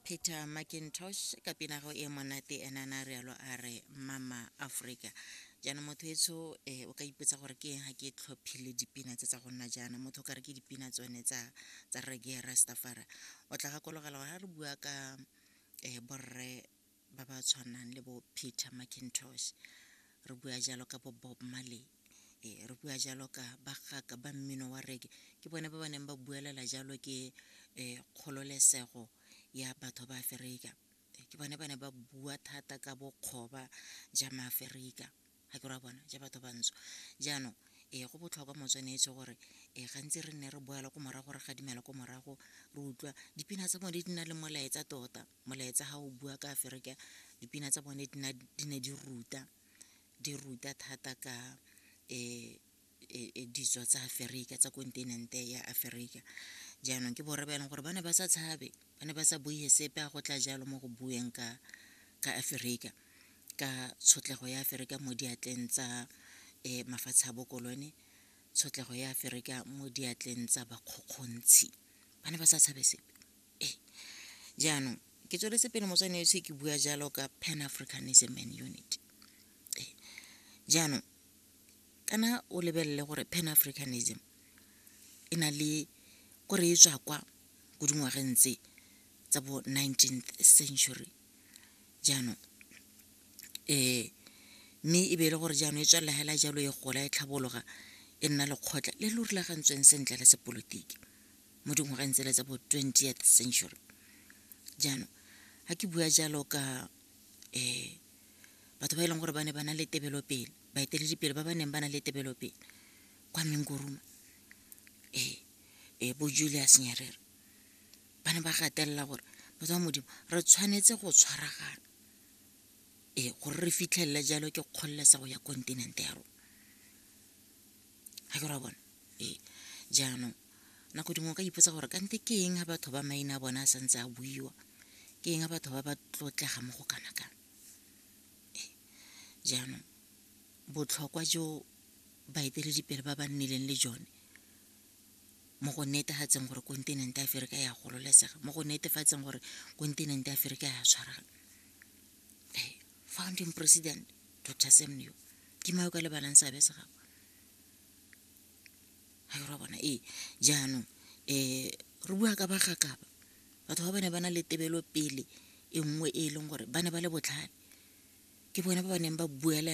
peter macintosh ka pinago e monate ena na rialo a re mama aforika jaanong motho etsho um eh, o ka ipotsa gore ke eng ga ke tlhophile dipina tse tsa go nna jaana motho o ka re ke dipina tsone tsa tsa rege rastafara o tla gakologela gore ga re bua ka um borre ba ba tshwanang le bo peter macintosh re bua jalo ka bo bob marley e re bua jalo ka bagaka ba mmino wa reke ke bone ba ba neng ba buelela jalo ke um kgololesego ya batho ba aferika ke bone ba ne ba bua thata ka bokgoba ja maaferika ga ke ra bona ja batho bantsho jaanong ee go botlhokwa motswanetse gore ee gantsi re nne re boela ko morago re gadimela ko morago re utlwa dipina tsa bone di na le molaetsa tota molaetsa ga o bua ka aferika dipina tsa bone di ne di ruta di ruta thata ka um e, e, ditswa tsa aferika tsa kontinente ya aferika jaanong ke borre ba e leng gore ba ne ba sa tshabe ba ne ba sa buige sepe a go tla jalo mo go bueng ka ka aferika ka tshotlego ya aferika mo diatleng tsa um mafatshe a bokolone tshotlego ya aferika mo diatleng tsa bakgokgontshi ba ne ba sa tshabe sepe ee jaanong ke tsweletse pele motswane yotlhe ke bua jalo ka pan africanism and unity ee jaanong kana o lebelele gore pan africanism e na le ko re e tswa kwa ko dingwageng tse tsa bo 19th century jaanong um mme e be e le gore jaanong e tswelela hela jalo e gola e tlhabologa e nna lekgotla le le rulagantsweng sentle la sepolotiki mo dingwageng tsele tsa bo 20th century jaanong ga ke bua jalo ka um batho ba e leng gore ba ne ba na le tebelopele baeteledipele ba ba neng ba na le tebelopele kwa menguruma ee ee bo julius nyerere ba ne ba gatelela gore motswa modimo re tshwanetse go tshwaragana ee gore re fitlhelele jalo ke kgololesego ya kontinente ya rona ga ke ra bona ee jaanong nako dingwe o ka ipotsa gore kante ke eng ga batho ba maina a bone a santse a buiwa ke eng ga batho ba ba tlotlega mo go kana kana jaanong botlhokwa jo baeteledipele ba ba nnileng le jone mo go netefatseng gore kontinente ya aferika ya gololesega mo go netefatseng gore kontinente ya aferika ya tshwarang eh, founding president dr semneo ke mao ka lebalang seabe se gago ga re bona ee jaanong um re bua ka bagakaba Batho ba ba ne ba na le tebelopele e nngwe e e leng gore ba ne ba le botlhale, ke bone ba ba neng ba buela.